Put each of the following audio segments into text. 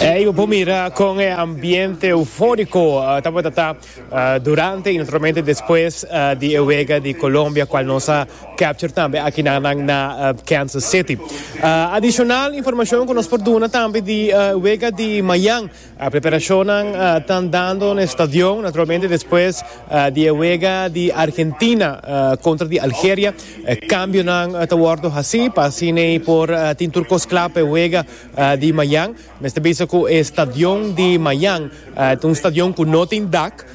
Ey bo por mira con e ambiente euforico tabata ta durante y naturalmente despues di e wega di Colombia cual nos a capture tambe aki na nan na Kansas City. Adicional informacion cu nos por duna tambe di wega di mayan. Preperashonnan ta andando na e stadion naturalmente despues di e wega di Argentina kontra di Algeria. Kambionan ta wòrdu hasí pa asina ei por tin tur kos kla pa e wega di mañan. Mester bisa ku e stadion di mañan ta un stadion ku no tin dak.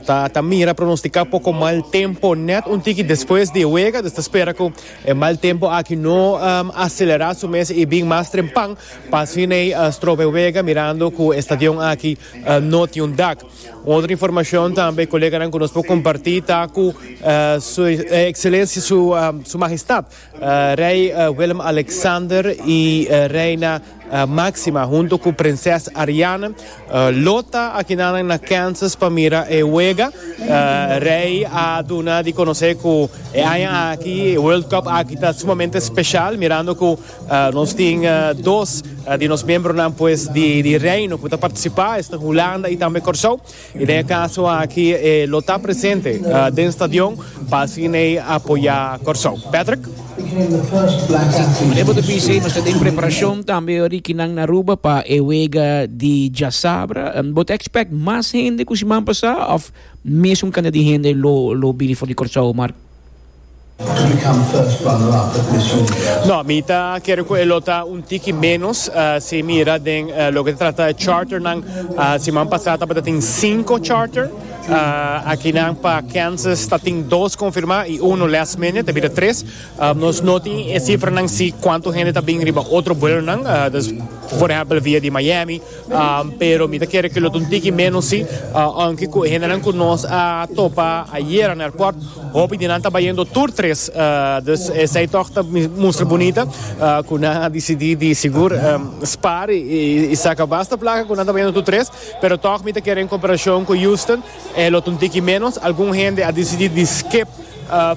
Ta mira pronosticá poco mal tempo net un tiki despues di e wega, dus ta spera cu e mal tempo aki no acelerá su mes y bin mas trempan pa asina ei stroba e wega mirando cu e stadion aki no tin un dak. Un otro informacion tambe coleganan cu nos por comparti ta cu Su Excelencia Su Majestad, Rei Willem-Alexander i Reina Máxima hunto ku Prinses Ariane lo ta akinanan na Kansas pa mira e wega. Rei a duna di konosé ku e aña aki e World Cup aki ta sumamente speshal mirando ku nos tin dos di nos miembronan pues di Reino ku ta partisipá, esnan Hulanda i tambe Kòrsou. I den e kaso aki e lo ta presente den stadion pa asina ei apoyá Kòrsou. Patrick. Meneer Botopisi, nos ta den preparashon tambe ora di kinan na Aruba pa e wega di djasabra. Bo ta ekspèkt mas hende ku siman pasá òf mes un kantidad di hende lo bini for di Kòrsou, Mark? No, mi ta kere ku e lo ta un tiki ménos, si mira den loke ta trata e charternan, siman pasá tabatatin sinku charter, akinan pa Kansas ta tin dos konfirmá i uno last minute, a bira tres. Nos no tin e sifranan si kuantu hende ta bin riba otro buelonan, des, por ehèmpel via di Miami. pero mi ta kere ke lo ta un tiki ménos sí, ounke ku e hendenan ku nos a topa ayera na airport, hopi di nan ta bayendo tur tres. Dus esei tòg ta mustra bunita ku nan a disidí di sigur spar i saka basta plaka ku nan ta bayendo tur tres, pero tòg mi ta kere en komparashon ku Houston e lo ta un tiki ménos. Algun hende a disidí di skip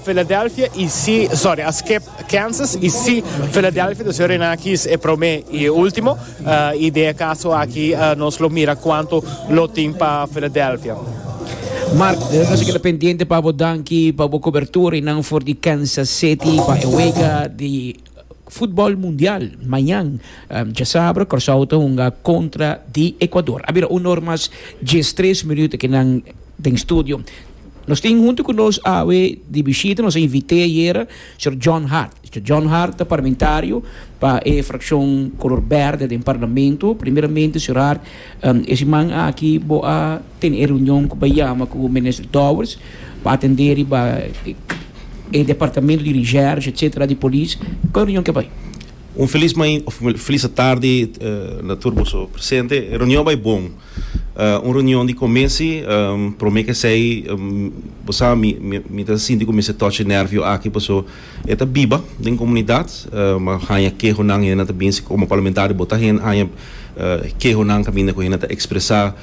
Philadelphia i sí, sòri, a skip Kansas y si Philadelphia ta ser na kis e prome y e ultimo y den e caso aki nos lo mira cuanto lo tin pa Philadelphia. Mark, nos a keda pendiente pa bo danki pa bo cobertura y nan for di Kansas City pa e wega di football mundial mañan. Um, dje sabra Corsao ta hunga contra di Ecuador. A bira un or mas djes tres minuut aki nan den studio. Nos tin hunto cu nos awe di bishita, nos a invite ayera Sr. John Hart. Sr. John Hart ta parlamentario pa e fraccion color berde den parlamento. Primeramente Sr. Hart, e siman aki bo a tene e reunion cu bo a yama cu Minister Dowers pa atende riba e departamento di recherche etc. Di Police. Cu e reunion ke bay? Un feliz main of feliz atardi na tur boso presente. E reunion a bay bon. Un reunion di comesi, prome c'esey bo sa mi mi ta sinti cu mi esey touch e nervio aki paso e ta biba den comunidad, bo a haya kehonan hende ta binsi como parlamentario bo ta haya kehonan caminda cu hende ta expresa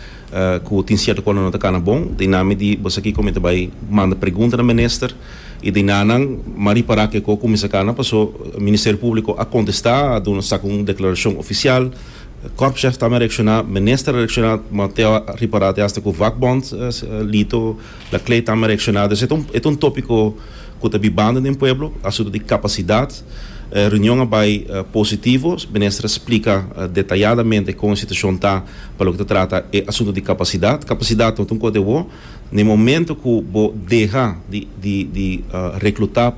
cu tin cierto cosa no ta cana bon ta y nan mi di bo sa kico mi ta bay manda pregunta na minister y den nan nan m'a ripara kico cu mi sa cana paso Ministerio Publico a contesta a duna saca un declaracion oficial. Korpschef tambe a reakshoná, minister a reakshoná, ma te awa riba rat e asta ku vakbond Lito Lakley tambe a reakshoná. Dus e ta e ta un tópiko ku ta bibando den pueblo, asuntu di kapasidat. E reunion a bai positivo, minister a splika detayadamente kon e situashon ta pa loke ta trata e asuntu di kapasidat. Kapasidat no ta un kos di awo. Na e momento ku bo deha di di di reklutá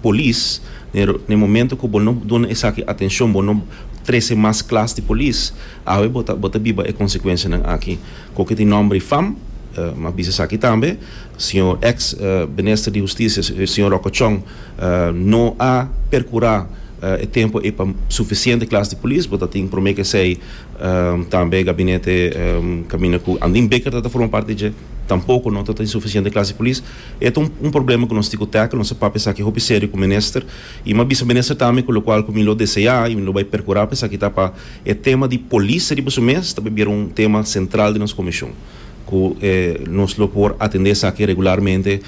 polis, na e na e momento ku bo no duna esaki atenshon, bo no trese mas klas di polis, awe bo ta bo ta biba e konsekuensianan aki. Ku oke tin nòmber i fam, m'a bisa esaki tambe, señor eks Minister di Hustisia, señor Rokochon, no a perkurá e tempu ei pa sufisiente klas di polis. Bo ta tin promé k'esei Tambe e gabinete kaminda ku Andin Bikker ta ta forma parti dje, tampoko no ta ta insufisiente klase polis. E ta un problema ku nos tin ku tèkel, nos ta papia esaki hopi serio ku minister i mi a bisa minister tambe ku lokual ku mi lo deseá i mi lo bai perkurá pa esaki ta pa e tema di polis riba su mes ta por bira un tema sentral den nos komishon ku nos lo por atendé esaki regularmente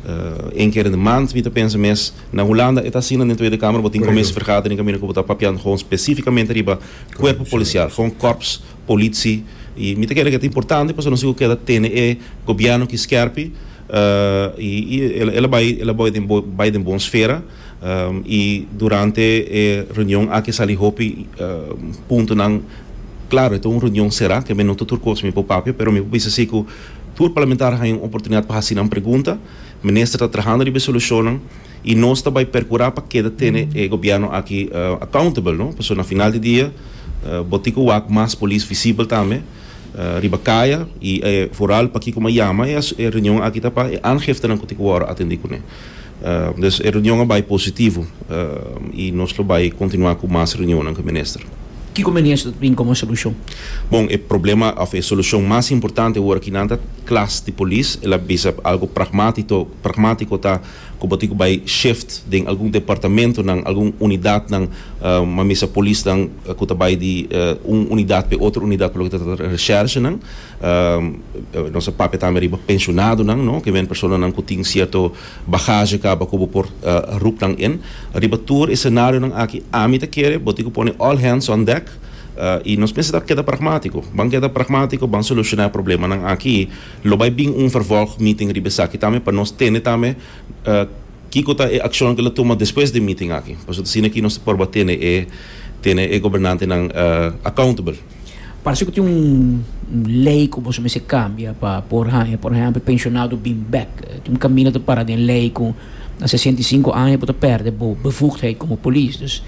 un kere den mant mi ta pensa mes. Na Hulanda e ta asina den Tweede Kamer bo tin kominsievergadering kaminda ku bo ta papiando hògè spesífikamente riba. Cuerpo Policial, con Corps Politie y mi ta kere cu e ta importante pasobra nos tin cu keda tene e Gobierno aki scherpi y y el a bay el a bay bay den bon sfera y durante e reunion aki a sali hopi puntonan claro e ta un reunion cera keme no ta tur cosa mi por papia pero mi por bisa si cu tur Parlamentario haña un oportunidad pa haci nan pregunta. Minister ta trahando riba e solucionnan y nos ta bay percura pa keda tene e gobierno aki accountable no, pasobra na final di dia bo tin cu wak mas polis visibel tambe riba caya y e foral pakico m'a yama e reunion aki ta pa e aangiftenan cu tin cu worde atendi cune. Dus e reunion a bay positivo y nos lo bay continua cu mas reunionnan cu e minister. Kiko menies lo ta bin komo solushon? Bon, e problema òf e solushon mas importante ora kinan ta klas di polis. El a bisa algu pragmátito, pragmátiko ta ku bo tin ku bai shift den algun departamentunan, algun unidatnan, mamisa polisnan ku ta bai di un unidat pa e otro unidat pa loke ta trata di reshèrshenan. Nos a papia tambe riba penshonadonan, no? Kimen personanan ku tin sierto. Bagaje kaba ku bo por rup nan in. Riba tur e senarionan aki ami ta kere bo tin ku pone all hands on deck i nos mester ta keda pragmátiko. Ban keda pragmátiko, ban solushoná e problemanan aki. Lo bai bin un vervolg meeting riba esaki tambe pa nos tende tambe kiko ta e akshonnan ku lo tuma despues di e meeting aki. Pasobra asina ki nos ta porba tene e gobernantenan accountable. Parse ku tin un lei ku boso mester kambia pa por haña, por ehèmpel, penshonado bin bèk. Tin un kaminda ta para den lei ku na sesenta i sinku aña bo ta pèrdè bo bevugdheid komo polis. Dus,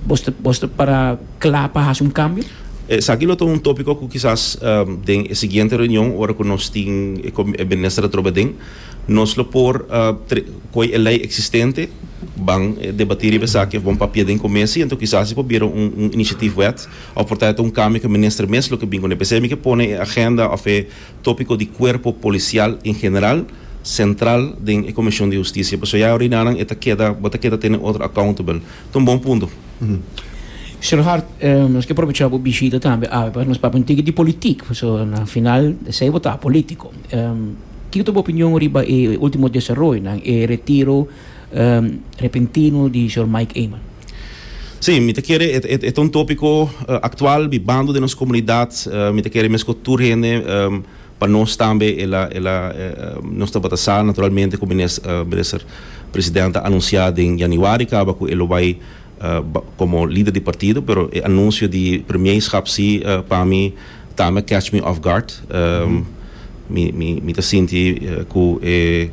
bos ta bos ta para kla pa hasi un kambio? Esaki lo ta un tópiko ku kisas den e siguiente reunion, ora ku nos tin e minister atrobe aden, nos lo por koge e lei eksistente, ban debatí riba esaki òf bon papia den komesi, anto kisas e por bira un inisiativwet. Of por ta e ta un kambio ku minister mes lo ke bin kuné. P'esei mi ke pone e agenda of e topiko di kuerpo polisial en general sentral den e komishon di hustisia. Pasobra ya Rinaran e ta keda bo ta keda tene otro accountable. Ta un bon punto. Señor Hart, nos ke aprovechá bo bishita tambe awe pa nos papia un tiki di politik, pasobra na final esei bo ta polítiko. Kiko ta bo opinion riba e último desaroyonan, e retiro. Repentino di Jor Mike Eman. Sí, mi ta kere e ta un tópiko aktual bibando den nos komunidat. Mi ta kere mes ku tur hende pa nos tambe el a el a nos tabata sa naturalmente ku mines Minister President a anunsiá den yanüari kaba ku e lo bai komo lider di partido pero e anunsio di Premierskap sí pa mi Ta me catch me off guard mi ta sinti cu e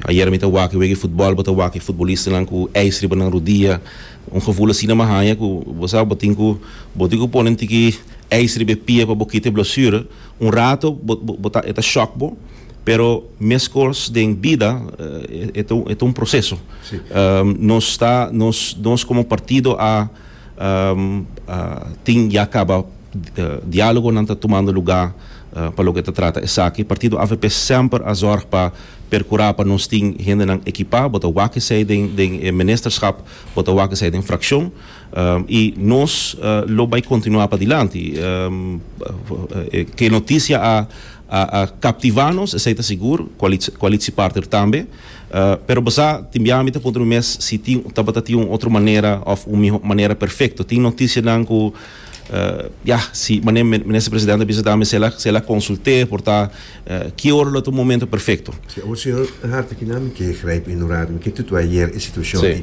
ayer mi ta wak e wega di futbol bo ta wak e futbolistanan cu ijs riba nan rudia un gevoel asina mi a haña cu bo sa bo tin cu bo tin cu pone un tiki ijs riba e pia pa bo kita e blesure un rato bo ta e ta shock bo pero mescos den bida e ta un proceso nos ta nos como partido a. Tin ya caba dialogonan ta tumando luga pa loke ta trata esaki. Partido avp semper a zorg pa percura pa nos tin hendenan equipa, bo ta wak esey den den e Ministerschap, bo ta wak esey den fraccion. Y nos lo bay continua padilanti. E noticia a. A a captiva nos, esey ta sigur, Qualits Qualitsi partner tambe. Pero bo sa, tin bia mi ta puntra mi mes si tin tabata tin un otro manera of un miho manera perfecto. Tin noticianan cu ya, si mane Minister President a bisa tambe si el a si el a consulte por ta ki ora lo ta un momento perfecto. Oca bo siñor Harte ki nan mi ke grijp inorado, mi ke tutu ayer e situacion aki.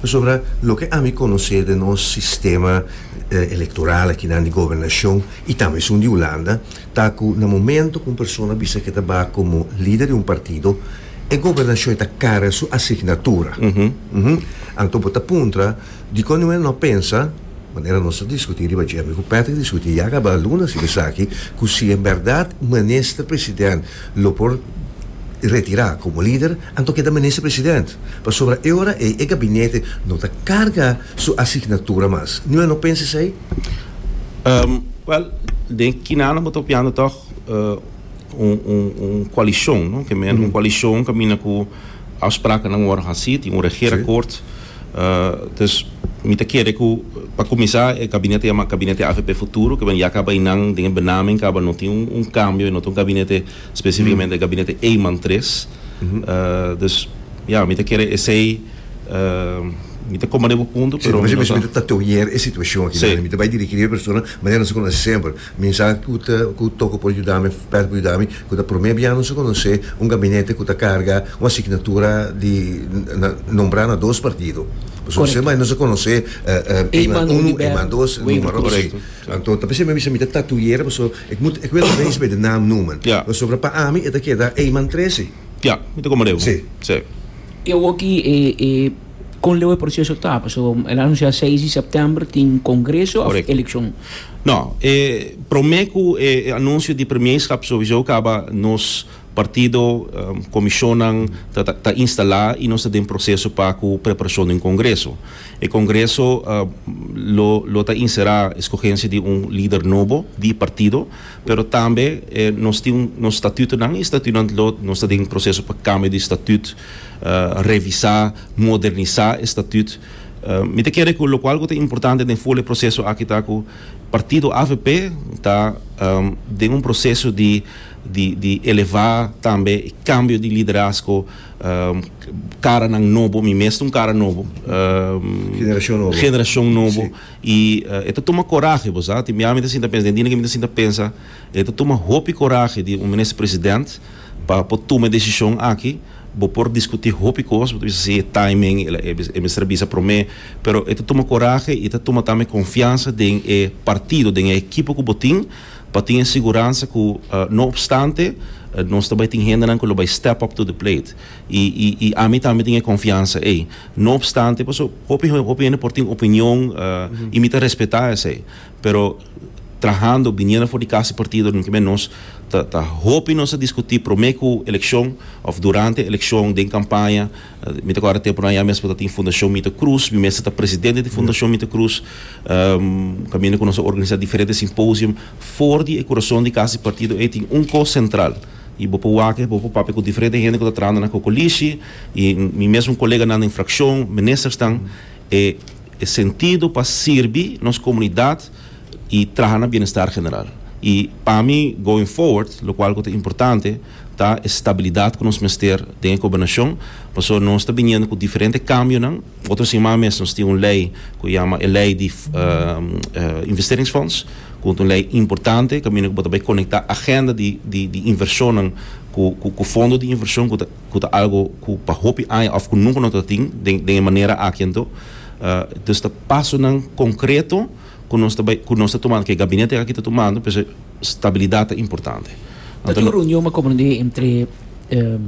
Pasobra loke ami conoce den nos sistema electoral aki nan di gobernacion y tambe esun di Hulanda, ta cu na momento cu un persona bisa cu e ta bay como lider di un partido, e gobernacion e ta carga su asignatura. Anto bo ta puntra, dicon nu e no pensa, manera nos a discuti riba dje, mi cu Patrick discuti ya caba lunes riba esaki, cu si en berdad minister president lo por retira como lider, anto keda minister president. Pasobra e ora ey e gabinete no ta carga su asignatura mas. Nu e no pensa esey? Um, well, den Kinana bo ta piando toch uh, un, un, un coalition, no? Que men, mm -hmm. un coalition camina cu afspraken dan worden gezien, die un regeerakkoord. Sí. Uh, dus mi te kere ku pa comisar e gabinete llama gabinete AVP futuro, que ben ya acaba inan den benaming acaba no tin un, un cambio, no tin un gabinete específicamente mm. gabinete Eman 3. Dus ya, mi ta kere esei, mi ta koma den bo punto, pero mi no ta. Si, mi ta tatoear e situashon aki, mi ta bai dirigi riba e persona manera nos a konosé semper. Mi no sa ku toko por yuda mi, Pat por yuda mi, ku ta promé bia nos a konosé un gabinete ku ta karga un asignatura di nombrá na dos partido. Pasobra si nos a konosé, e man uno, e man dos, numero así. Anto ta p'esei mi a bisa mi ta tatoear pasobra. Ik moet ik wil nog eens bij de naam noemen. Ja. Pasobra pa ami e ta keda Eyman Tresi. Ja, mi ta komand'e. Sí. Sí. E awok'i e e kon leu e proseso ta? Pasobra el a anunsiá seis di sèptèmber tin kongreso òf elekshon. Nò, e promé ku e anunsio di premierskap souiso kaba nos. Partido, Comishonnan ta ta instala y nos ta den proceso pa cu preparacion den Congreso. E Congreso lo lo ta insera escogencia di un lider nobo di partido, pero tambe nos tin un nos statutonan y statutonan lo nos ta den proceso pa cambio di statut, revisa, modernisa e statut. Mi ta kere cu locual cu ta importante den for e proceso aki ta cu Partido avp ta den un proceso di. di di elevá tambe e kambio di liderazgo karanan nobo mi mes ta un kara nobo Generashon nobo generashon nobo i e ta tuma korahe bo sa tin bia mi ta sinta pensa den dina ke mi ta sinta pensa e ta tuma hopi korahe di un minister president pa por tuma e desishon aki bo por diskutí hopi kos bo ta bisa si e taimen e mester a bisa promé pero e ta tuma korahe i ta tuma tambe konfiansa den e partido den e ekipo ku bo tin. pa tin e siguransa ku no opstante nos ta bai tin hendenan ku lo bai step up to the plate i i i ami tambe tin e konfiansa ei no opstante paso hopi hopi hende por tin opinion i mi ta respetá esei pero trahando biniendo for di kasa partido den kimen nos ta ta hopi nos a diskutí promé ku elekshon òf durante elekshon den kampaña. Mi ta kòrda tempunan ya mi mester ta tin Fundashon Mita Krus, mi mester ta presidente di Fundashon Mita Krus. Kaminda ku nos a organisá diferente simposium for di e kurason di Kas di Partido ei tin un kos sentral i bo por wak, bo por papia ku diferente hende ku ta trahando na kokolishi i mi mesmu koleganan den frakshon, ministersnan. E sentido pa sirbi nos komunidat. y traha na bienestar general. Y pa mi going forward locual cu ta importante ta e stabilidad cu nos mester den e Gobernacion pasobra nos ta biniendo cu diferente cambionan. Otro siman mes nos tin un ley cu yama e ley di Investeringsfonds cu ta un ley importante caminda cu bo ta bay conecta agenda di inversionnan cu fondo di inversion cu ta. ku ta algu ku pa hopi aña òf ku nunka no ta tin den den e manera aki anto dus ta pasonan konkreto ku nos ta bai ku nos ta tumando ku e gabinete aki ta tumando por eso stabilidat ta importante. Ta tin un reunion a komand'é entre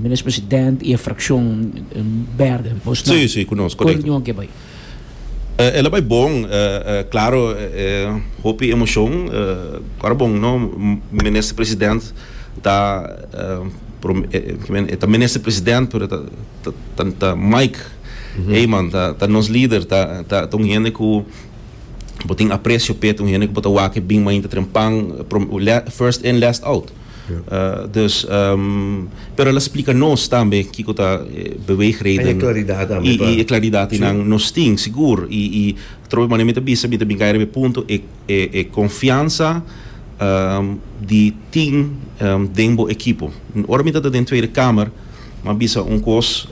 Minis President i e frakshon bèrdè. Bos na ku e reunion aki a bai? El a bai bon, claro e hopi emocion, ora bon no Minister President ta kimen e ta Minister President pero e ta Mike Eman ta nos lider ta ta un hende cu bo tin aprecio p'e ta un hende cu bo ta wak e bin mainta tren pan first in last out. Dus, pero el a splika nos tambe kiko ta e beweegreden. En e klaridat tambe. I i e klaridat ei nan nos tin, sigur. I i trobe manera mi ta bisa, mi ta bin kai riba e punto, e e e konfiansa di tin den bo ekipo. Ora mi tabata den Tweede Kamer, M'a bisa un kos,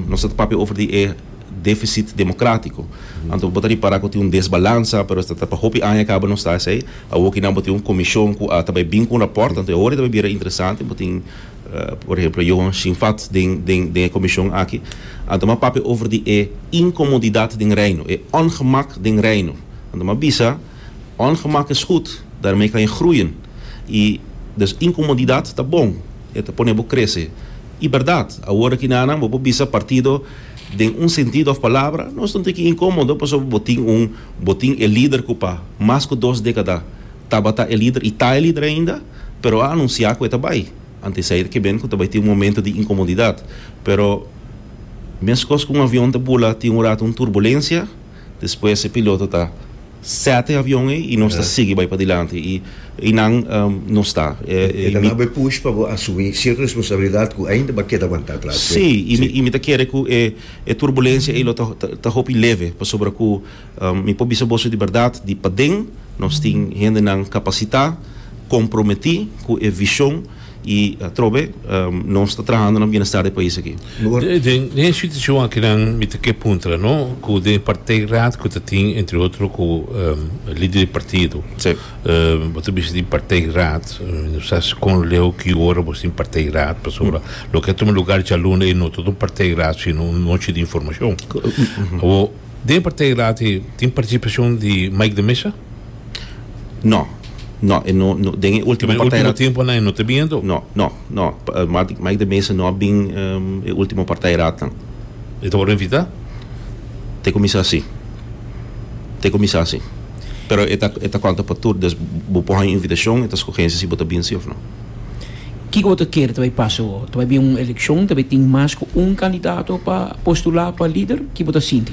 nos no ta papia over di e defisit demokratiko. Anto bo ta ripará ku tin un desbalansa, pero esta ta pa hopi aña kaba nos ta esei. Awo kinan bo tin un komishon ku a ta bai bin ku un rapòrt, anto e ora ta bai bira interesante. Bo tin, por ehemplo, Johan Schimfat den den den e komishon aki. Anto m'a papia over di e inkomodidat den Reino, e òngemak den Reino. Anto m'a bisa, òngemak es gud, daarmee kan je groeien. I, dus, inkomodidat ta bon. E ta pone bo krese. I bèrdat, awor aki nannan bo por bisa partido den un sentido òf palabra, nos ta un tiki inkómodo pasobra bo tin un, bo tin e lider ku pa mas ku dos dékada tabata e lider i ta e lider ainda, pero a anunsiá ku e ta bai. Ante esei ta keben ku ta bai tin un momentu di inkomodidat. Pero meskos ku un avion ta bula tin un ratu un turbulensia, Despues e piloto ta sèt e avion ei i nos ta sigui bai padilanti i i nan no sta. E ta nau bo e push pa bo asumí sierto responsabilidat ku ainda bo a keda wantá atras. Sí, i mi ta kere ku e e turbulensia ei lo ta ta hopi leve pasobra ku mi por bisa boso di bèrdat di paden nos tin hendenan kapasitá, komprometí ku e vishon. Y atrobe nos ta trahando na bienestar di e pais aki. Den e situacion akinan mi ta ke puntra no, cu den e partijraad cu ta tin entre otro cu lider di partido, bo ta bisa tin partijraad, mi no sa scon leu cu ora bo tin partijraad, pasobra loke a tuma lugar djaluna ei no ta un partijraad sino un nochi di informacion. Awo den e partijraad ei tin participacion di Mike de Meza? No, no, e no, no den e último partida. último tiempo na e no te bien to? No, no, no. Mike de Mesa no a bin um, e último partida ratan. E te por invita? Te comisá si. Te comisá si. Pero e ta, e ta conta pa tur, des bo por haña invitacion, e ta scogense si bo ta bin si of no. Kico bo ta kere ta bai pasa awo? Ta bai bien un eleccion, ta bai tin mas cu un candidato pa postulá pa lider? Ki bo ta sinti?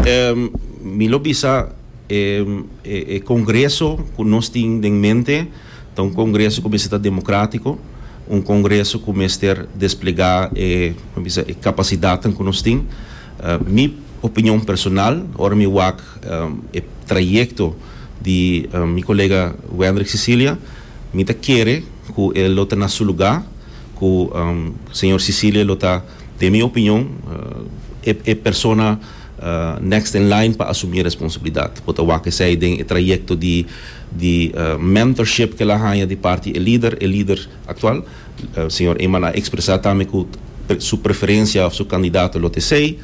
Um, mi lo bisa. E congreso cu nos tin den mente ta un congreso cu mester ta democratico, un congreso cu mester desplega e capacidadnan cu nos tin. Mi opinion personal, ora mi wak e trayecto di mi colega Wendrick Cecilia, mi ta kere cu e lo ta na su lugar, cu señor Cecilia lo ta. Den mi opinion, e persona next in line pa asumí e responsibilidat por ta wak esei den e trayekto di mentorship ku el a haña di parti e lider, e lider aktual. Señor Eman a ekspresá tambe ku su preferensia òf su kandidato lo ta esei.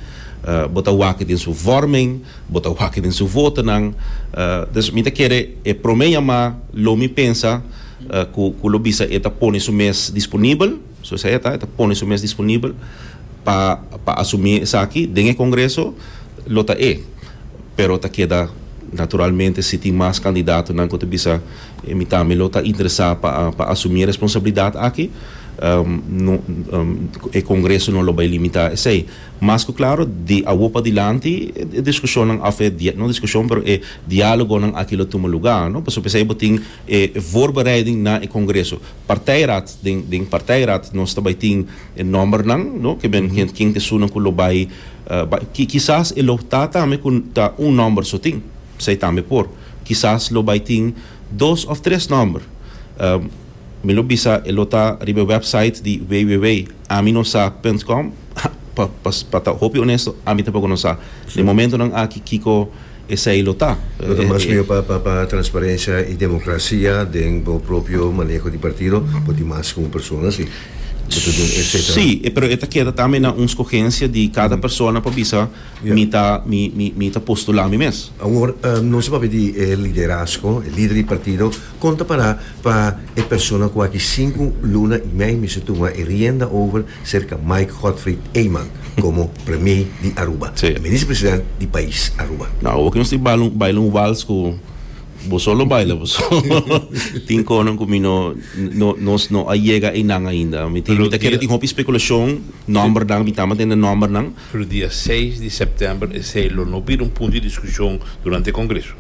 Bo ta wak den su vòrmen, bo ta wak den su votonan. Dus mi ta kere e promé yamá lo mi pensa ku lo bisa e ta pone su mes disponibel. So esei e ta, e ta pone su mes disponibel pa pa asumí esaki den e Kongreso, lo ta e. Pero ta keda naturalmente si tin mas kandidatonan ku ta bisa e mi tambe lo ta interesá pa pa asumí e responsabilidat aki, no e Kongreso no lo bai limitá esei. Mas ku klaro di awo padilanti e diskushonnan òf e dia, no diskushon pero e diálogonan aki lo tuma lugá, no. Pasobra esei bo tin e voorbereiding na e Kongreso. Partijraad, den partijraad nos ta bai tin e nombernan no ke men hende ken esunnan ku lo bai bai ki kisas e lo ta tambe ku ta un nomber so tin esei tambe por kisas lo bai tin dos òf tres nomber mi lo bisa e lo ta riba e wèpsait di www ami no sa punt com pa pa ta hopi onesto ami tampoco no sa den momentonan aki kiko Esei lo ta. Lo ta mas mihó pa transparencia y democracia den bo propio maneho di partido, bo tin mas cu un persona si bo ta duna e fecha. Si, pero e ta keda tambe na un scogencia di cada persona pa bisa mi ta mi ta postula mi mes. Awor nos a papia di e liderazgo, e lider di partido. Kon ta para pa e persona ku a ki sinku luna i mei mester tuma e rienda over serka Mike Godfried Eyman komo Premie di Aruba i Minister President di pais Aruba. Na Aruba nos tin baila un wals ku bo solo baila bo solo. Tin konan ku mi no nos no a yega einan ainda. Mi ta kere tin hopi spekulashon, nòmbernan, mi ta ama tende nòmbernan. Pero dia seis di sèptèmber esei lo no bira un punto di diskushon durante e kongreso.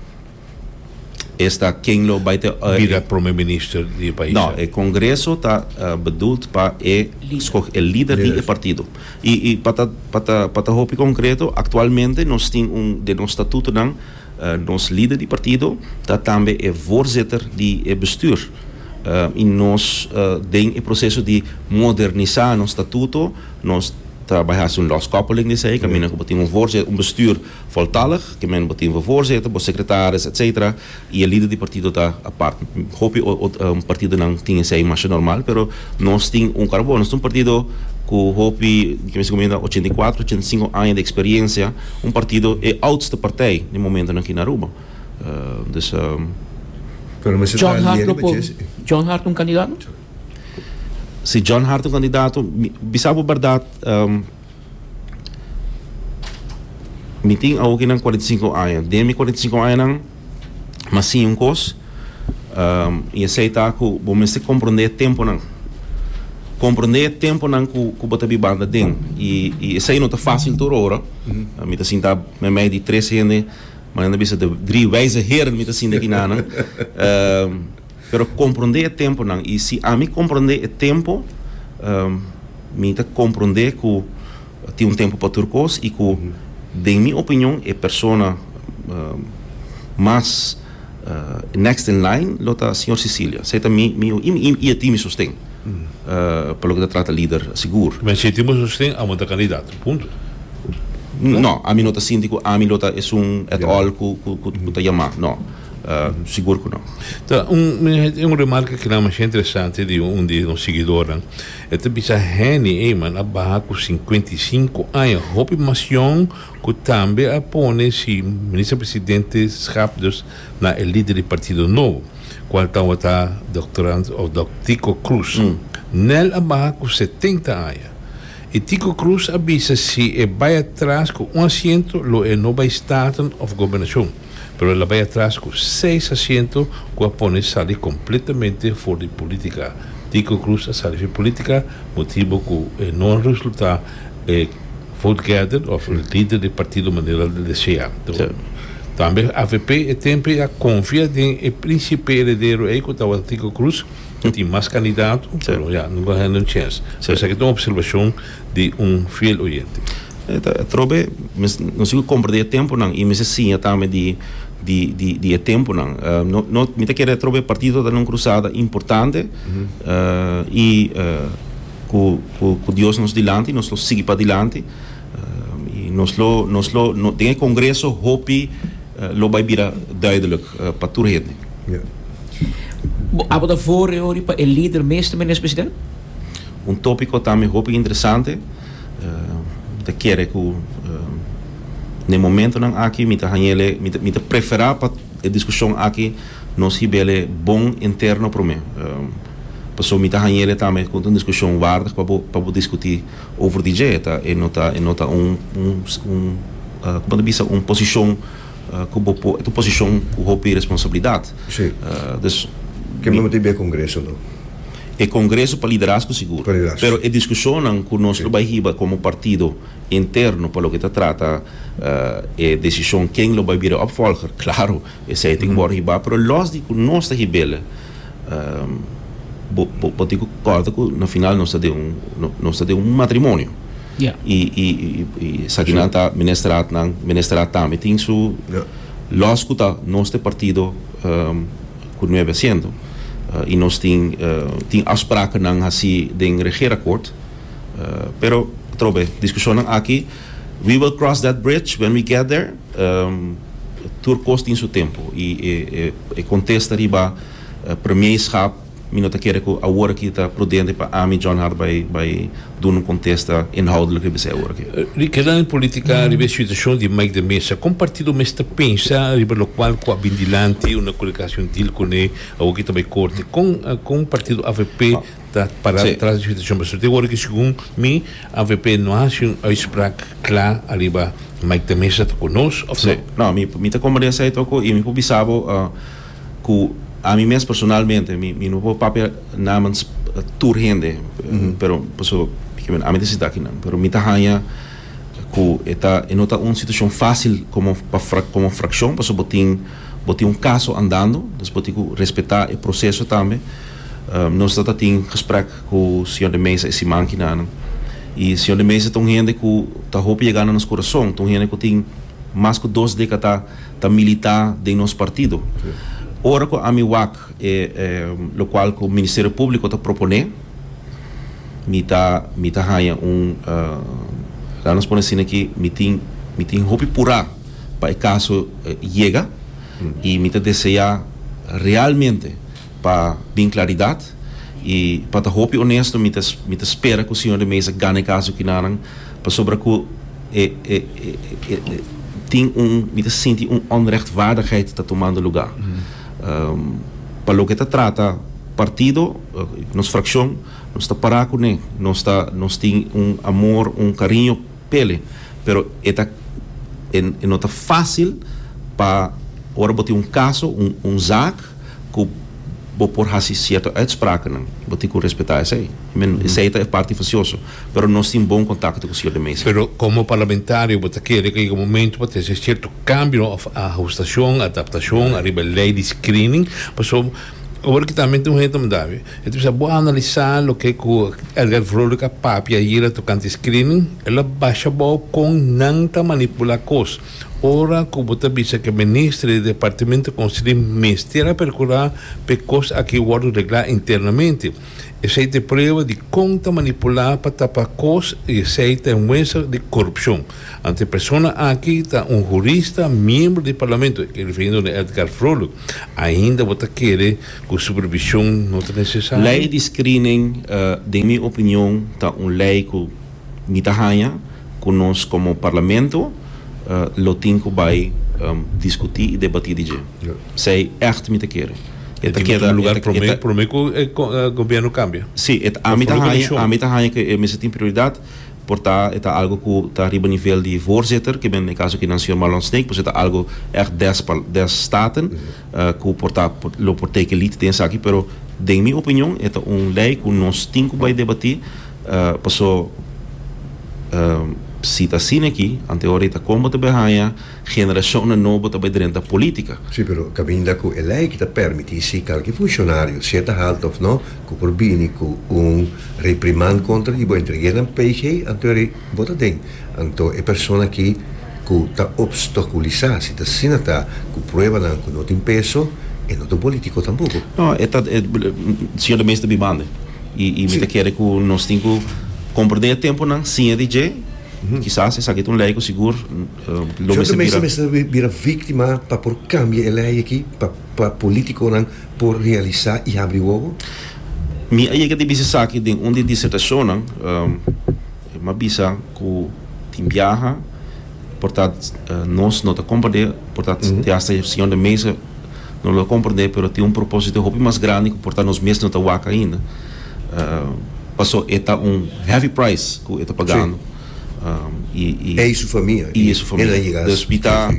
esta ken lo bai te bira prome minister di e pais no e congreso ta uh, bedoeld pa e escoge el lider di e partido y y pa ta pa ta pa ta hopi concreto actualmente nos tin un den nos statuto nan uh, nos lider di partido ta tambe e voorzitter di e bestuur uh, y nos uh, den e proceso di modernisa nos statuto nos ta bai hasi un loskoppeling di esei caminda yes. como tin un voorzitter un bestuur Voltallig, ke men bo tin for voorzitter, bo secretaris, etc. Y e lider di partido ta apart. Hopi partidonan tin esey masha normal, pero nos tin un cara bo. Nos ta un partido cu hopi, ke men sicumen ta ochenta i kuater, ochenta i sinku aña di experiencia. Un partido, e oudste partij den momentonan aki na Aruba. Dus. John Hart lo por, John Hart un candidato? Si John Hart un candidato, bisa bo berdad. Mi tin awo kinan cuarenta y cinco aña. Den mi cuarenta y cinco añanan, mi a siña un cos, am, i esei ta ku bo mester komprendé e tempunan. Komprendé e tempunan ku ku bo ta bi banta den. I i esei no ta fásil tur ora. Mi ta sinta meimei di tres hende, manera nan bisa dri wijze heren mi ta sinta aki nan. Am. Pero komprondé e temponan, i si ami komprondé e tempo, mi ta komprondé ku tin un tempo pa tur kos i ku den mi opinion e persona mas next in line lo ta señor Sicilia. Esei ta mi mi opinion i e tin mi sosten pa loke ta trata lider sigur. Mester e tin bo sosten amo ta kandidato, punto. No, ami no ta sinti ku ami lo ta esun at all ku ta yamá, no. Sigur ku no. Ta un remarka ku na masha interesante di un di nos seguidornan. E ta bisa, Henny, ey man a baha ku sinkuenta i sinku aña, hopi mas yòn ku tambe a pone si Minister Presidenteskap dus na e lider di Partido Nobo, kual tabata Doctorand of Doc. Tico Cruz. Nel a baha ku setenta aña. I Tico Cruz a bisa si e bai atras ku un asiento lo e no bai Staten of Gobernashon. pero el a bai atras cu seis asiento cu a pone sali completamente for di politica. Tico Cruz a sali fi politica motibo cu e no a resulta e vote gather of e lider di partido manera el a desea. Tambe avp e tempo a confia den e principe heredero ey cu tawata Tico Cruz cu tin mas candidato pero ya no go hen un chance. Esaki ta un observacion. di un fiel oyente. Atrobe nos mester compra di e temponan y mester siña tambe di di di e temponan. No mi ta kere atrobe e partido ta na un crusada importante y cu cu Dios nos dilanti nos lo sigui padilanti y nos lo nos lo den e congreso hopi lo bay bira duidelijk pa tur hende. Abo ta vore ori pa e lider meeste, Meneer President? Un tópiko tambe hopi interesante ta kere ku den momentunan aki mi ta hañ'ele mi ta preferá pa e diskushon aki nos hib'ele bon interno promé pasobra mi ta hañ'ele tambe ku ta un diskushon waardig pa bo diskutí over di dje e no ta e no ta un kòmo ta bisa un posishon. cu bo por, es un posicion cu hopi responsabilidad. Si. Dus. Ke mi motibe e congreso lo? E congreso pa liderazgo sigur. Pa liderazgo. Pero e discusionnan cu nos lo bay hiba como partido interno pa loke ta trata e decision ken lo bay bira e opvolger, claro, esey tin cu worde hiba. Pero los di cu nos ta hibel, bo tin cu corda cu na final nos ta den un, nos ta den un matrimonio. y y y esaki nan ta ministerat nan ministerat tambe tin su los cu ta nos te partido cu nuebe asiento y nos tin tin afsprakennan haci den regeerakkoord pero atrobe discusionnan aki we will cross that bridge when we get there tur cos tin su tempo y e e contesta riba premierschap. Mi no ta kere ku awor aki ta prudente pa ami, John Hart, bai bai duna un kontesta inhoudelijk riba esei awor aki. Di keda den politika riba e situashon di Mike de Mesa, kon partido mester pensa riba lokual ku a bin dilanti una kolekashon dil kuné awor ki ta bai korte? Kon kon partido avp ta para tras di situashon pasobra te awor aki segun mi avp no a hasi un uitsprak kla ariba Mike de Mesa ta ku nos òf no? No, mi ta komprende esei tok ku i mi por bisa bo. cu ami mes personalmente mi mi no por papia namens tur hende pero paso porque bueno ami ta sita aki nan pero mi ta hanja cu e ta e no ta un situacion facil como pa frac como fraccion paso bo tin bo tin un caso andando dus bo tin cu respeta e proceso tambe nos ta ta tin gesprek cu señor De Meza y siman aki nan y señor De Meza ta un hende cu ta hopi yega na nos curason ta un hende cu tin mas cu dos decata ta milita den nos partido. Ora cu ami wak e lo cual cu Ministerio Publico ta propone, mi ta mi ta haya un laga nos pone asina aki mi tin mi tin hopi pura pa e caso yega y mi ta desea realmente. Pa bin claridad y pa ta hopi honesto mi ta mi ta spera cu señor de Meza gana e caso kinanan pasobra cu e e e e tin un mi ta sinti un onrechtvaardigheid ta tomando lugar. Pa loke ta trata partido nos fraccion nos ta para cune nos ta nos tin un amor un cariño Tele, pero e ta e no ta fácil pa ora bo tin un kaso, un un zaak ku bo por hasi sierto uitsprakennan, bo tin ku respetá esei. I men esei ta e parti fasioso, pero nos tin bon kontakto ku Siñor de Meza. Pero komo parlamentario bo ta kere ku a yega momentu pa ta hasi sierto kambionan òf ahustashon, adaptashon, ariba e lei di screening, pasobra. Ora ki tambe tin un hende ta mandabe, e ta bisa, Bo a analisá loke ku Edgar Vrolijk a papia ayera tokante e screening? El a basha abou kon nan ta manipulá kos. Ora ku bo ta bisa ku e minister di Departamento Konsehí mester a perkurá pa e kos akí wòrdu reglá internamente, esei ta e prueba di kon ta manipulá pa tapa kos i esei ta e muestra di korupshon. Anto e persona akí ta un hurista miembro di Parlamento, e refirindo na Edgar Vrolijk. Ainda bo ta kere ku supervishon no ta nesesario? Lei di screening den mi opinion ta un lei ku mi ta haña ku nos komo Parlamento lo tin ku bai diskutí i debatí di dje. Esei ègt mi ta kere. E ta keda promé ku e Gobierno kambia? Sí, ami ta haña ku e mester tin prioridat. Por ta e ta algo ku ta riba nivel di voorzitter, ke men e kaso aki nan señor Marlon Snake, pues e ta algo ègt des des staten ku por ta lo por teken lid den esaki, pero den mi opinion e ta un lei ku nos tin ku bai debatí pasobra si ta asina aki anteora i ta kon bo ta bai haña. Generacionnan nobo ta bay drenta politica. Sí, pero caminda cu e ley ki ta permiti si calki funcionario, sea ta halta of no, cu por bini cu un reprimand contra di bo entre yenan PG, anto e bo ta den, anto e persona ki cu ta obstaculisa, si ta asina ta cu pruebanan cu no tin peso, e no ta un politico tampoco. No, e ta, e señor de Meester ta bibande y y mi ta kere cu nos tin cu comprende e temponan siña di dje, kisas esaki ta un ley cu sigur, Lo mester bira. Jorge Meza mester bira víktima pa por kambia e lei aki, pa polítikonan por realisá i habri wowo? Mi a yega di bisa esaki den un di e disertashonnan. E m'a bisa ku tin biaha, por ta nos no ta komprendé, por ta te hasta e señor den mesa no lo ta komprendé, pero tin un propósito hopi mas grandi ku por ta nos mes no ta wak ainda. Pasó e ta un heavy price ku e ta pagando. Ei su famia i el a yega asina. Pi ta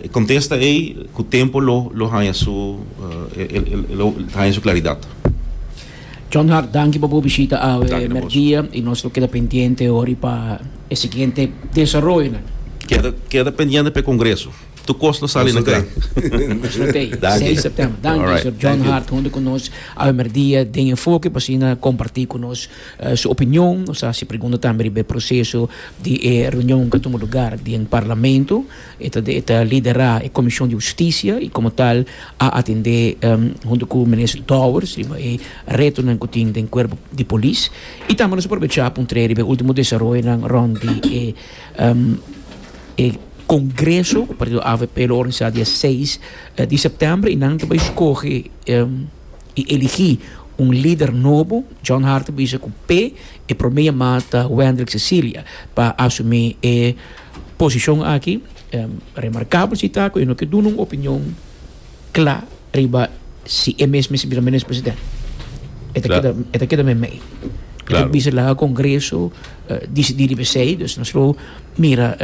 e kontesta ei ku tempu lo haña su e lo haña su klaridat. John Hart danki pa bo bishita awe merdia i nos lo keda pendiente hori pa e siguiente desaroyonan. Keda pendiente pa e kongreso. Tur kos lo sali na kla. Nos lo tei seis September. Danki Sor. John Hart huntu ku nos awe merdia den Enfoke pa asina komparti ku nos. su opinion, nos a haci pregunta tambe riba e proceso di e reunion cu a tuma lugar den Parlamento, e ta e ta lidera e Comision di Husticia y como tal a atende hunto cu Minister Dowers riba e retonan cu tin den Cuerpo di Polis y tambe nos a probecha pa un tree riba e ultimo desaroyonan rond di e e congreso cu partido avp lo organisa dia seis di september y nan ta bay scoge. I eligí un lider nobo. John Hart a bisa ku p'e e promé yamá ta Wendrick Cecilia pa asumí e posishon aki. Remarkabel si ta ku e no ke duna un opinion kla riba si e mes mester bisa menes president. E ta keda e ta keda meimei. E ta bisa laga Kongreso disidí riba esei. Dus nos lo mira.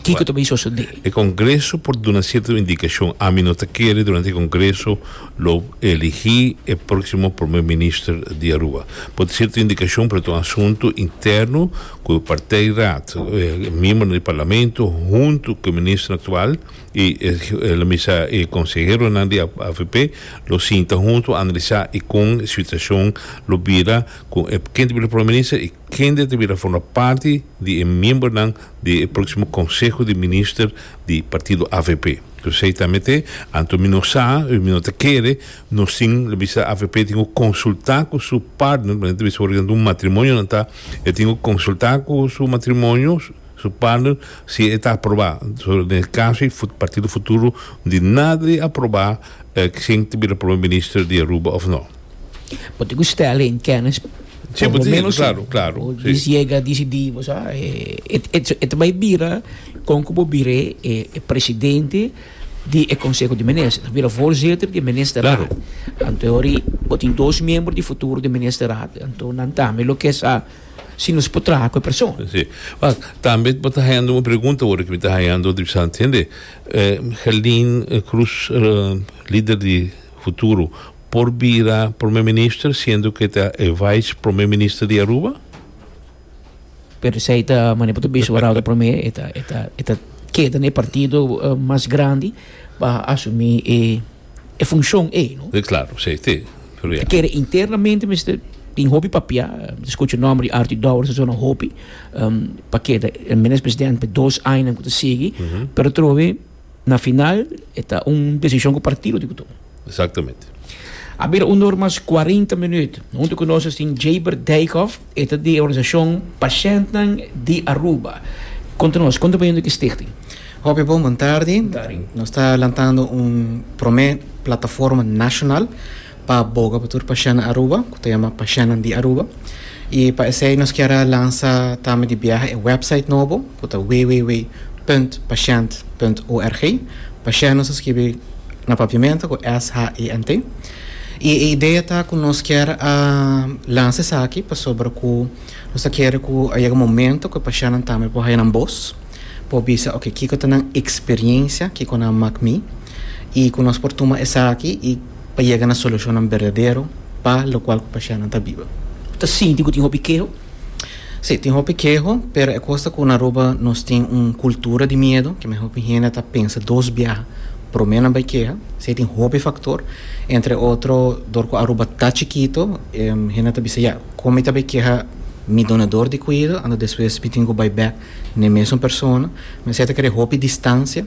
Kiko ta bay sosodé? E Kongreso por duna sierto indikashon. Ami no ta kere durante e Kongreso lo eligí e próksimo Promé Minister di Aruba. Por ta sierto indikashon, pero ta un asuntu interno ku e partijraad, e miembronan di Parlamento huntu ku e Minister aktual i lo misa e konseheronan di avp lo sinta huntu analisá i kon e situashon lo bira ku e ken ta bira Promé Minister i Kende ta bira forma parti di e miembernan di e proksimo konseho di minister di partido avp? Kusai ta mete? Anto mi no sa, mi no ta kere, nos tin lo bisa avp tin ku konsultá ku su partner, maneira ta bisa ora kinan ta un matrimonio nan ta, e tin ku konsultá ku su matrimonio, su partner, si e ta aprobá. So den e kaso ei partido futuro di nada di aprobá kshin ta bira prome minister di Aruba òf nò. Bo tin cu stellen in kennis. Si, bo tin yega, claro, claro. Bo tin yega dicidi, bo sa, e ta bay bira con cu bo bira e presidente di e Conseho di Minister. E ta bira voorzitter di e Ministerraad. Claro. Anto yori, bo tin dos miembro di futuro di e Ministerraad. Anto nan tambe lo ke sa si nos por traha cu e persona. Si. Wak, tambe bo ta hayando un pregunta ora cu mi ta hayando di bisa, tende, Herlin Cruz, lider di. Futuro, por bira Prome Minister siendo cu e ta e Vice Prome Minister di Aruba? Pero esey ta mane bo ta bisa Barao ta prome e ta e ta e ta keda na e partido mas grandi pa asumi e e funcion ey no. E claro esey te pero ya. Kere internamente mester tin hopi papia mi ta scucha nomber di Artie Dowers en zona hopi pa keda al menos presidente pe dos añanan cu ta sigui pero trohe. Na final e ta un desishon ku partido tin ku tuma. Exactamente. A bira un or mas cuarenta minüt. Huntu ku nos tin Jaybert Dijkhof, e ta di e organisashon Pashèntnan di Aruba. Konta nos, kon ta bayendo ki stichting? Hopi bon, bon tardi. Nos ta lantando un promé plataforma nashonal pa boga pa tur pashanan Aruba ku ta yama Pashanan di Aruba. I pa esei nos kier a lansa tambe di biaha e wèpsait nobo ku ta www.pashant.org. Pashant nos a skibi na papiamento ku S-H-A-N-T. I e idea ta ku nos kier a lansa esaki pasobra ku nos ta kere ku a yega momento ku e pashanan tambe por haña nan bos, por bisa oke kiko ta nan eksperiencia, kiko nan mak mi, i ku nos por tuma esaki i pa yega na solushonnan berdadero pa lokual ku pashianan ta biba. Bo ta sinti ku tin hopi keho? Si, tin hopi keho, pero e kos ta ku na Aruba nos tin un kultura di miedu, ke men hopi hende ta pensa dos biaha promé nan bai keha. Esei tin hopi faktor, entre otro dor ku Aruba ta chikitu, hende ta bisa, ya, kon mi ta bai keha mi donador di kuido, ando despues mi tin ku bai bèk n'e mesun persona? Esei ta kere hopi distansia.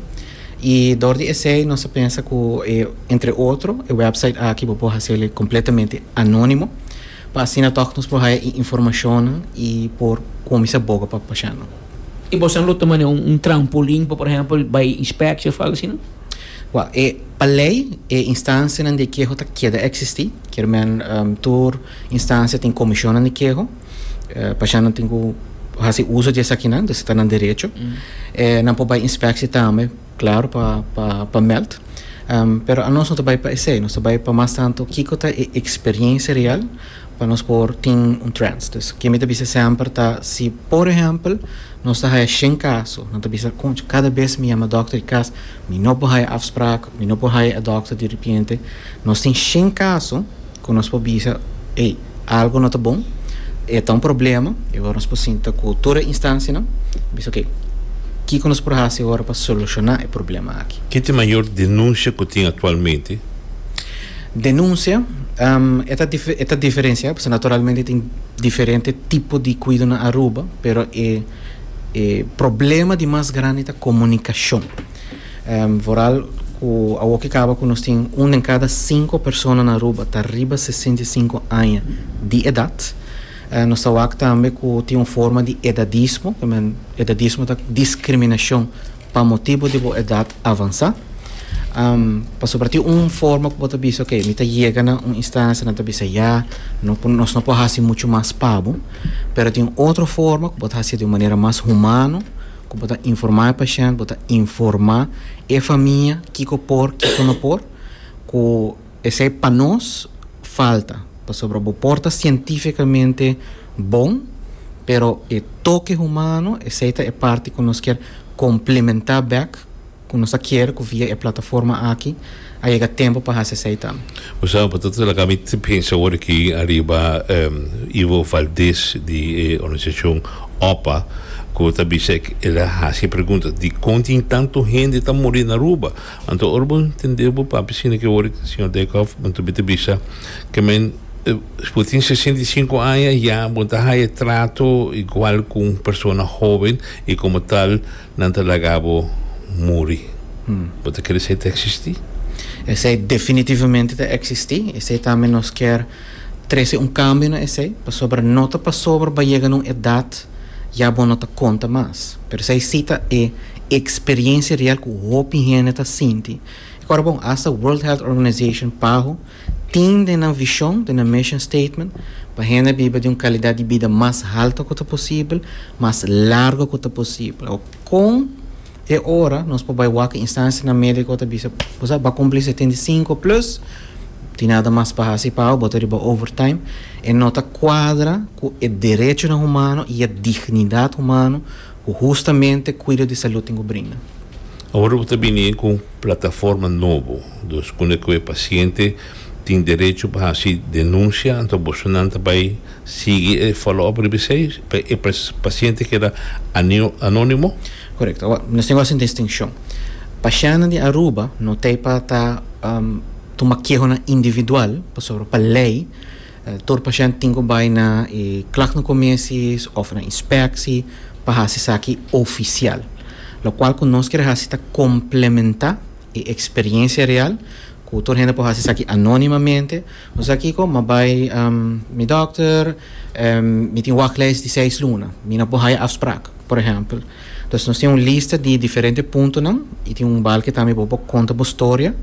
I dor di esei nos ta pensa ku e entre otro e wèpsait aki bo por hasil e kompletamente anónimo pa asina tòg nos por haya e informashonnan i por kuminsá boga pa pashanan. I boso lo tuma den un trampolin pa por ehèmpel bai inspekshi òf algu asina? Wèl, e pa lei e instansianan di keho ta keda eksistí. Kier men tur instansia tin komishonnan di keho. Eh, Pashá nan tin ku hasi uso di esakinan, dus ta nan derecho. Eh, nan por bai inspeksie tambe, klaru, pa, pa, pa meld. Em, pero anos no ta bai pa esei, nos ta bai pa mas tantu kiko ta e eksperiensia real pa nos por tin un trends. Dus ke mi ta bisa semper ta si, por ehèmpel, nos ta haya shen kaso, nan ta bisa, konchi, kada bes mi yama dòkter di kas, mi no por haya afsprak, mi no por haya e dòkter di repente. Nos tin shen kaso, Ku nos por bisa, Ey, algu no ta bon, e ta un problema, i awor nos por sinta ku tur e instansianan i bisa, Oke, kiko nos por hasi awor pa solushoná e problema aki? Ken ta e mayor denunsia ku tin aktualmente? Denunsia, E ta e ta diferensiá pasobra naturalmente tin diferente tipo di kuido na Aruba, pero e e problema di mas grandi ta komunikashon. Vooral ku awoke kaba ku nos tin un den kada sinku persona na Aruba ta riba sesenta i sinku aña di edat. Nos ta wak tambe ku tin un forma di edadismo, ke men edadismo ta diskriminashon pa motibu di bo edat avansá. Pasobra tin un forma ku bo ta bisa oke mi ta yega na un instansha nan ta bisa ya no por nos no por hasi muchu mas pa bo, pero tin otro forma ku bo ta hasié di un manera mas humano. Cu bo ta informa e pashent, bo ta informa e famia kico por, kico no por, cu esey pa nos falta, pasobra bo por ta cientificamente bon, pero e toke humano esey ta e parti cu nos kier complementa bek. Cu nos a kier cu via e plataforma aki a yega tempo pa haci esey ta. Osa, pa ta traca mi ta pensa awor aki ariba Ivo Valdez di e organisacion OPA cu ta bisa ec el a haci e pregunta dicon tin tanto hende ta muri na Aruba. Anto ora bo tende bo papia asina ki awor aki señor Dijkhoff anto mi ta bisa ke men bo tin sesenta i sinku aña ya bo ta haya trato igual cu un persona hoben y como tal Nan ta laga bo muri. Bo ta kere esei ta eksistí? Esei definitivamente ta eksistí. Esei ta mi nos kier trese un kambio na esei, pasobra no ta pasobra bo a yega na un edat ya bo no ta konta mas. Pero esei sí ta e eksperiencia real ku hopi hende ta sinti. Ikora bon, asta World Health Organization, paho, Tin den nan vishon, den nan mission statement, pa hende biba di un kalidat di bida mas halta ku ta posibel, mas largu ku ta posibel. Awor, kon e ora nos por bai wak instansianan médiko ta bisa, Bo sa, bo a kumpli setenta i sinku plus, tin nada mas pa hasi pa awor, bo ta riba overtime. E no ta kuadra ku e derechonan humano i e dignidat humano. Ku hustamente kuida di salud tin ku brinda. Awor bo ta bini ku un plataforma nobo, dos kunda ku e pasiente tin derecho pa hasi denunsia, anto bosonan ta bai sigui e follow-up riba esei pa e pasiente keda anónimo? Korekto. Awor, nos tin gosi un distinshon. Pashentenan di Aruba no ta ei pa ta tuma kehonan individual, pasobra pa lei, Tur pashènt tin ku bai na e klagnokomisis òf na inspeksi pa hasi esaki ofisial. Lokual ku nos kere hasi ta komplementá e eksperiensia real ku tur hende por hasi esaki anónimamente. Nos ta kiko? Mi a bai mi dòkter èn mi tin wachtlys di seis luna. Mi no por haya afsprak, por ehèmpel. Entonces nos tin un lista di diferente puntonan i tin un balketambe bo por konta bo storia.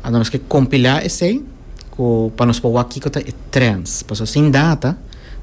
Nos ke kompilá esei. cu pa nos por wak kico ta e trends. Pasobra sin data.